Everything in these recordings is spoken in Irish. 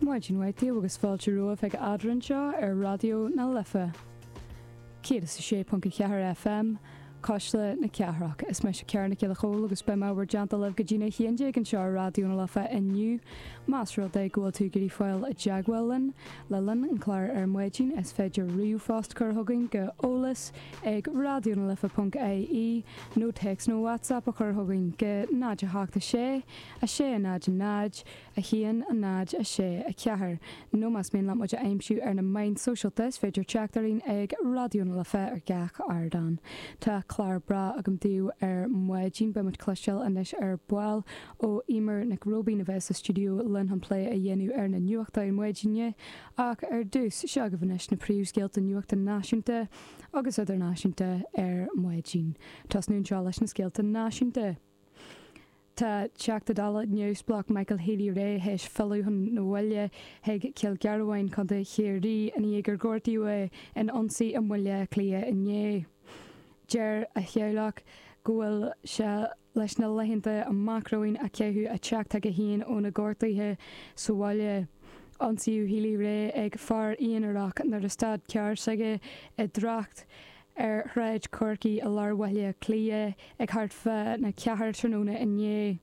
Maidin mhaith daoibh agus fáilte romhaibh chuig Eadrainn seo ar Raidió na Life 106.4 FM, Cuisle na Cathrach. Is mise Ciara Nic Giolla Chomhaill agus beidh mé beo ar líne libh go dtína 11 anseo ar Raidió na Life inniu. Más rud é go bhfuil tú ag iarraidh fáil i dteagmháil linn le linn an chláir ar maidin is féidir ríomhphost a chur chugainn go eolas ag raidiónalife.ie nó téacs nó WhatsApp a chur chugainn go 0 8 7 6 6, 0, 0, 1, 0, 6, 4, nó más mian leat muid a aimsiú ar na meáin shóisialta is féidir teacht orainn ag Raidió na Life ar gach ardán. Tá clár breá agam daoibh ar maidin, beidh muid ag cloisteáil anois ar ball ó Emer Nic Róibín a bheidh sa stiúideo linn chun plé a dhéanamh ar na nuachtáin mhaidine ach ar dtús, seo agaibh anois na príomhscéalta nuachta náisiúnta agus idirnáisiúnta ar maidin. Tosnú anseo leis na scéalta náisiúnta. Tá Teachta Dála Neamhspleách Michael Healy-Rae théis filleadh chun an bhaile chuig Cill Ghearbháin, Co Chiarraí, i ndiaidh gur gortaíodh é in ionsaí i mBaile Átha Cliath inné. Deir a theaghlach go bhfuil sé leis na laethanta amach romhainn a chaitheamh ag teacht chuige féin ó na gortuithe sa bhaile. Ionsaíodh Healy-Rae ag fear aonarach nuair a stad carr s'aige i dtrácht ar Shráid Chorcaí i lár Bhaile Átha Cliath ag thart fá na ceathair tráthnóna inné.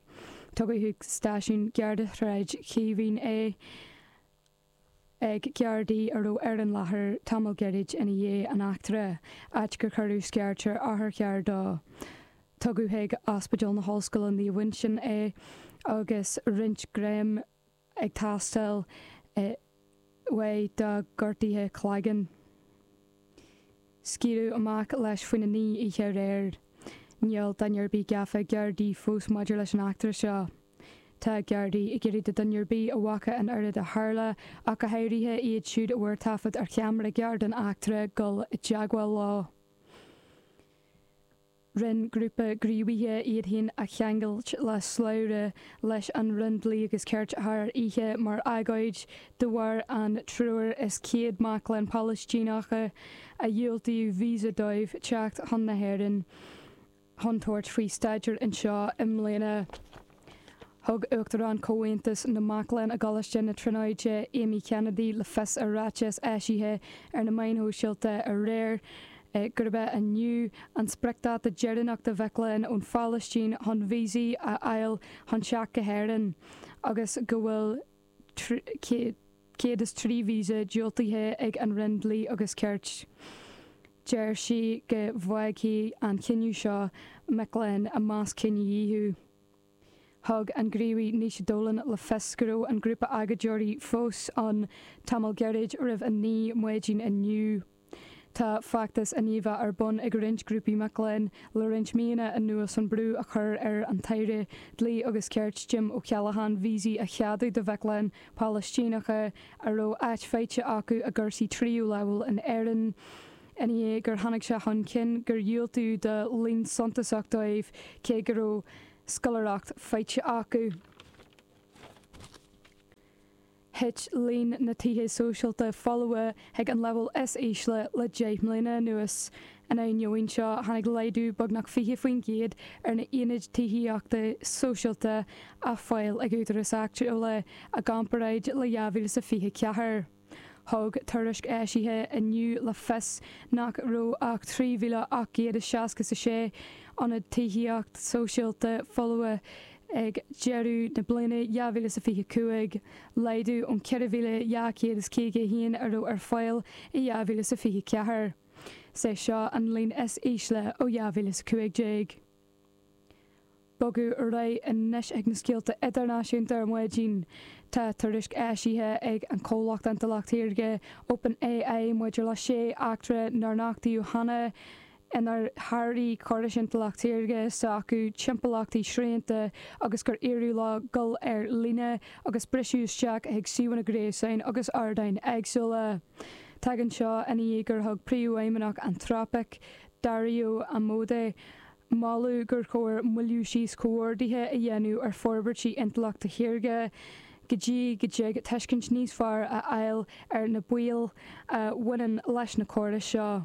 Tugadh chuig stáisiún Gharda Shráid Chaoimhín é ag Gardaí a raibh ar an láthair tamall gairid ina dhiaidh an eachtra, áit gur cuireadh scairt ar otharcharr dó. Tugadh chuig Ospidéal na hOllscoile Naomh Uinseann é agus roinnt greim. ag teastáil uaidh dá gortuithe cloigeann. Scaoileadh amach leis faoina naoi oíche aréir. Níl duine ar bith gafa ag Gardaí fós maidir leis an eachtra seo. Tá Gardaí ag iarraidh do dhuine ar bith a bhfaca an oiread a tharla, ach go háirithe iad siúd a bhfuair taifead ar cheamara gearr an eachtra, dul i dteagmháil leo. Rinn grúpa gníomhaithe iad féin a cheangailt le slabhra leis an Roinn Dlí agus Cirt thar oíche mar agóid de bharr an triúr is céad mac léinn Palaistíneacha a dhiúltaíodh visa dóibh teacht chun na hÉireann chun tabhairt faoi staidéar anseo i mbliana. Thug Uachtarán Chomhaontas na Mac Léinn i gColáiste na Tríonóide, Amy Kennedy, le fios i ráiteas eisithe ar na meáin shóisialta aréir gurb é inniu an spriocdáta deireanach do mhic léinn ón Phalaistín chun víosaí a fháil chun teacht go hÉirinn agus go bhfuil 103 víosa diúltaithe ag an Roinn Dlí agus Cirt. Deir sí go bhfágfaidh an cinneadh seo mic léinn i measc cinedhíothú. Thug an gníomhaí Naoise Dolan le fios go raibh an grúpa agóideoirí fós ann tamall gairid roimh 9 maidin inniu. Tá feachtas i ndiaidh a bheith ar bun ag roinnt grúpaí mac léinn le roinnt míonna anuas chun brú a chur ar an tAire Dlí agus Cirt, Jim O'Callaghan, víosaí a cheadú do mhic léinn Palaistíneacha a raibh áit faighte acu i gcúrsaí tríú leibhéal in Éirinn ina dhiaidh gur tháinig sé chun cinn gur dhiúltaíodh do líon suntasach dóibh cé go raibh scoláireacht faighte acu. thit líon na tithe sóisialta folmha chuig an leibhéal is ísle le deich mbliana anuas. Ina ainneoin seo, tháinig laghdú beagnach 20% ar na haonaid tithíochta sóisialta ar fáil ag údaráis áitiúla i gcomparáid le 2024. Thug tuairisc eisithe inniu le fios nach raibh ach 3,866 ionad tithíocht sóisialta folmha, ag deireadh na bliana 2025, laghdú ón 4,251 a raibh ar fáil i 2024. Is é seo an líon is ísle ó 2015. Bogadh ar aghaidh anois chuig na scéalta idirnáisiúnta ar maidin. Tá tuairisc eisithe ag an comhlacht intleacht shaorga OpenAI maidir le sé eachtra nár nochtaíodh cheana inar sháraigh córais intleacht saorga s'acu timpeallachtaí srianta agus gur éirigh leo dul ar líne agus briseadh isteach chuig suíomhanna gréasáin agus ardáin éagsúla. Tagann seo ina dhiaidh gur thug príomhfheidhmeannach Anthropic, Dario Amodei, moladh gur chóir moilliú síos comhordaithe a dhéanamh ar forbairtí intleachta shaorga go dtí go dtig tuiscint níos fearr a fháil ar na baoil a bhaineann leis na córais seo.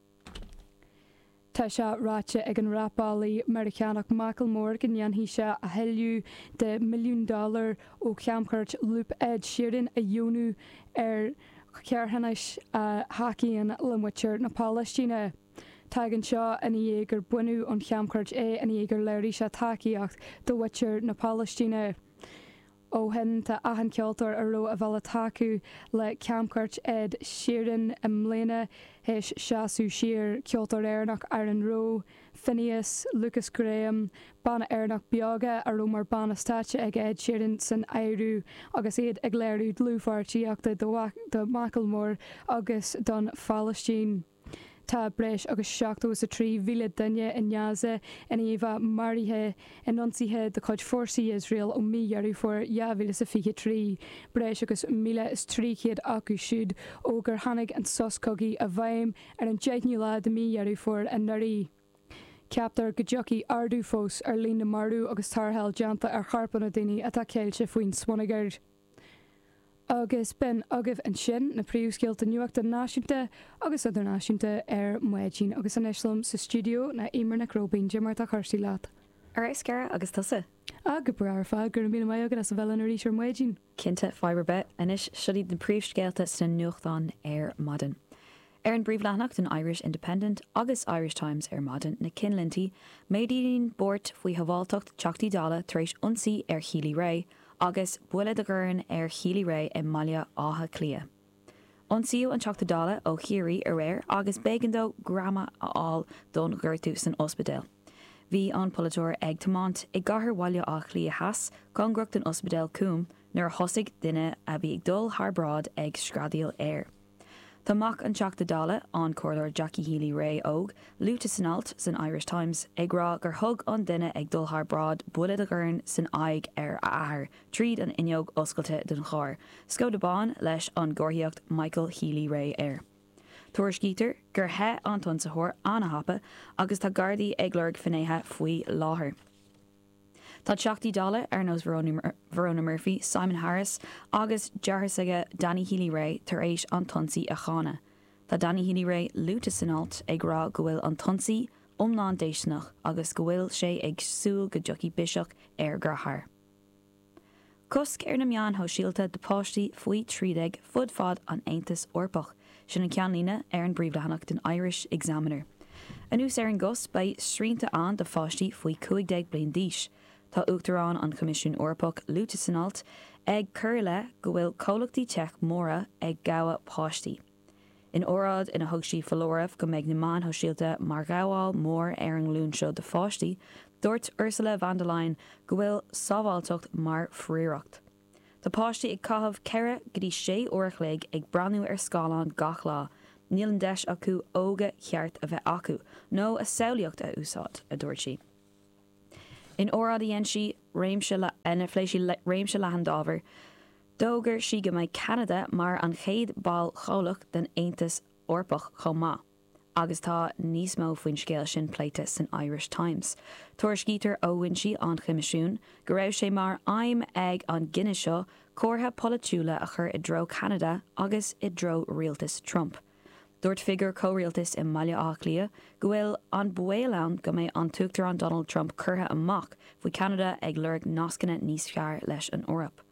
Tá sé ráite ag an rapálaí Meiriceánach Macklemore go ndéanfaidh sé a thuilleamh de mhilliún dollar ó chamchuairt Loop Ed Sheeran a dheonú ar charthanais a thacaíonn le muintir na Palaistíne. Tagann seo ina dhiaidh gur baineadh ón chamchuairt é ina dhiaidh gur léirigh sé tacaíocht do mhuintir na Palaistíne. Ó shin tá achan ceoltóir a raibh a bhille tacú le camchuairt Ed Sheeran i mbliana théis seasamh siar, ceoltóir Éireannach Aaron Rowe, Finneas, Lukas Graham, banna Éireannach Beoga a raibh mar banna stáitse ag Ed Sheeran san áireamh agus iad ag léiriú dlúthpháirtíochta do Mhacklemore agus don Phalaistín. Tá breis agus seachtó is a trí mhíle duine i nGaza in iomlán maraithe in ionsaithe de chuid fórsaí Iosrael ó mhí Dheireadh Fómhair dhá mhíle is a fiche trí, breis agus míle is trí chéad acu siúd ó gur tháinig an sos cogaidh i bhfeidhm ar an deichniú lá de mhí Dheireadh Fómhair anuraidh. Ceaptar go dtiocfaidh ardú fós ar líon na marbh agus tarrtháil déanta ar chorpanna daoine atá ceilte faoin smionagar. Agus b'in agaibh ansin na príomhscéalta nuachta náisiúnta agus idirnáisiúnta ar maidin. Agus anois liom sa stiúideo tá Eimear Nic Róibín. Cad é mar atá cúrsaí leat? Ar fheabhas, Ciara, agus tusa? Ah, go breá ar fad. Go raibh míle maith agat as a bheith linn arís ar maidin. Cinnte, fadhb ar bith. Anois, seo iad na príomhscéalta sna nuachtáin ar maidin. Ar an bpríomhleathanach den Irish Independent agus Irish Times ar maidin, na cinnlintí, méadaíonn buairt faoi shabháilteacht Teachtaí Dála tar éis ionsaí ar Healy-Rae agus buille de dhorn ar Healy-Rae i mBaile Átha Cliath. Ionsaíodh an Teachta Dála ó Chiarraí aréir agus b'éigean dó greamanna a fháil don ghortú san ospidéal. Bhí an polaiteoir ag tiomáint i gcathair Bhaile Átha Cliath Theas cóngarach don ospidéal Coombe nuair a thosaigh duine a bhí ag dul thar bráid ag screadaíl air. Tá mac an Teachta Dála, an Comhairleoir Jackie Healy Rae óg, luaite san alt san Irish Times ag rá gur thug an duine ag dul thar bráid buille de dhorn san aghaidh ar a athair tríd an fhuinneog oscailte den charr, Skoda bán leis an gcomharthaíocht 'Michael Healy Rae' air. Tuairiscítear gur theith an t-ionsaitheoir an-thapa agus tá Gardaí ag lorg finnéithe faoi láthair. Tá Teachtaí Dála ar nós Verona Murphy, Simon Harris agus deartháir s'aige Danny Healy-Rae tar éis an t-ionsaí a cháineadh. Tá Danny Healy-Rae luaite san alt ag rá go bhfuil an t-ionsaí iomlán déisteanach agus go bhfuil sé ag súil go dtiocfaidh biseach ar a dheartháir. Cosc ar na meáin shóisialta do pháistí faoi 13 fud fad an Aontais Eorpach, sin an ceannlíne ar an bpríomhleathanach den Irish Examiner. Anuas ar an gcosc beidh srianta ann do pháistí faoi 15 bliain d'aois. Tá Uachtarán an Choimisiúin Eorpach luaite san alt ag cur i leith go bhfuil comhlachtaí teic móra ag gabháil páistí. In óráid ina thug sí foláireamh go mbeidh na meáin shóisialta mar ghabháil mhór ar an nglúin seo de pháistí, dúirt Ursula von der Leyen go bhfuil sábháilteacht mar phríoracht. Tá páistí ag caitheamh ceithre go dtí sé uair a chloig ag breathnú ar scáileán gach lá, níl an deis acu óige cheart a bheith acu nó a samhlaíocht a úsáid, a dúirt sí. In óráid a dhein sí, réim, ina phléigh sí réimse leathan d'ábhair, D'fhógair sí go mbeidh Ceanada mar an chéad ball comhlach den Aontas Eorpach chomh maith agus tá níos mó faoin scéal sin pléite san Irish Times. Tuairiscítear ó fhoinsí an Choimisiúin go raibh sé mar aidhm ag an gcinneadh seo comhartha polaitiúil a chur i dtreo Cheanada agus i dtreo rialtas Trump. Dúirt figiúr comhrialtais i mBaile Átha Cliath go bhfuil an baol ann go mbeidh an tUachtarán Donald Trump curtha amach faoi Cheanada ag lorg nascanna níos fearr leis an Eoraip.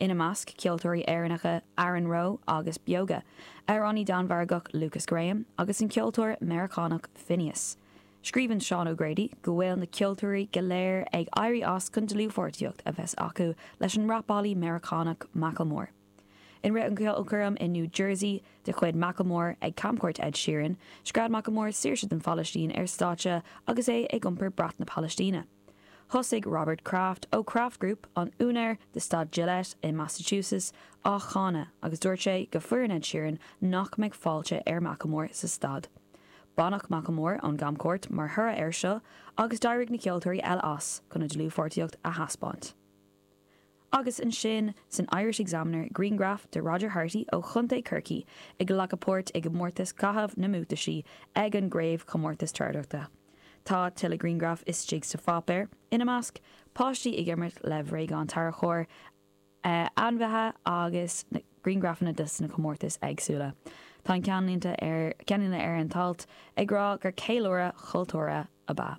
ina measc ceoltóirí Éireannacha Aaron Rowe agus Beoga, amhránaí Danmhargach Lukas Graham agus an ceoltóir Meiriceánach Finneas. Scríobhann Seán O'Grady go bhfuil na ceoltóirí go léir ag éirí as chun dlúthpháirtíocht a bheith acu leis an rapálaí Meiriceánach Macklemore. I rith an cheolchoirm in New Jersey de chuid Macklemore ag camchuairt Ed Sheeran, scread Macklemore saoirse don Phalaistín ar stáitse agus é ag iompar brat na Palaistíne. Thosaigh Robert Kraft ó Kraft Group, an úinéir de staid Gillette i Massachusetts, á cháineadh agus dúirt sé go foireann Ed Sheeran nach mbeadh fáilte ar Macklemore sa staid. Baineadh Macklemore ón gcamchuairt mar thoradh air seo agus d'éirigh na ceoltóirí eile as chun a dlúthpháirtíocht a thaispeáint. Agus ansin, san Irish Examiner, grianghraf de Roger Harty ó Chontae Chorcaí ag glacadh páirt i gcomórtas Caitheamh na mBuataisí ag an gCraobhchomórtas Treabhdóireachta. Tá tuilleadh grianghraf istigh sa pháipéar, ina measc, páistí ag imirt le bréagáin tarracóir, ainmhithe agus grianghrafanna de sna comórtais éagsúla. Tá an ceannlínte ar an t-alt ag rá gur ceiliúradh cultúrtha ab ea.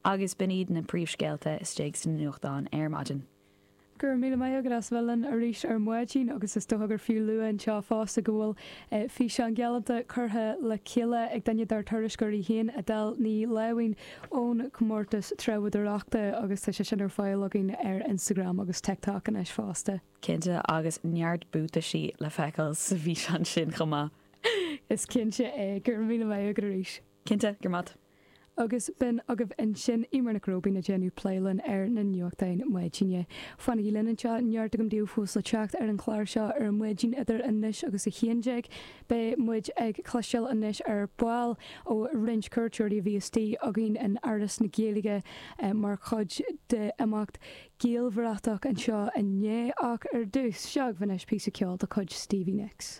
agus b'in iad na príomhscéalta istigh sna nuachtáin ar maidin. Go raibh míle maith agat as bheith linn arís ar maidin agus is dócha gur fiú lua anseo fosta go bhfuil físeán galánta curtha le chéile ag duine dár dtuairisceoirí féin, Edel Ní Láimhín, ón gcomórtas treabhdóireachta agus tá sé sin ar fáil againn ar Instagram agus TikTok anois fosta. Cinnte, agus neart buataisí le feiceáil sa bhfíseán sin chomh maith! Is cinnte é. Go raibh míle maith agat arís. Cinnte, go raibh maith agat. Agus b'in agaibh ansin Eimear Nic Róibín ag déanamh plé linn ar na nuachtáin maidine. Fanaigí linn anseo, neart againn daoibh fós le teacht ar an chlár seo ar an maidin idir anois agus a haon déag. Beidh muid ag cloisteáil anois ar ball ó roinnt cuairteoirí a bhí istigh againn in Áras na Gaeilge mar chuid d'imeacht Gaelbhratach anseo inné ach ar dtús, seo agaibh anois píosa ceoil de chuid Stevie Nicks.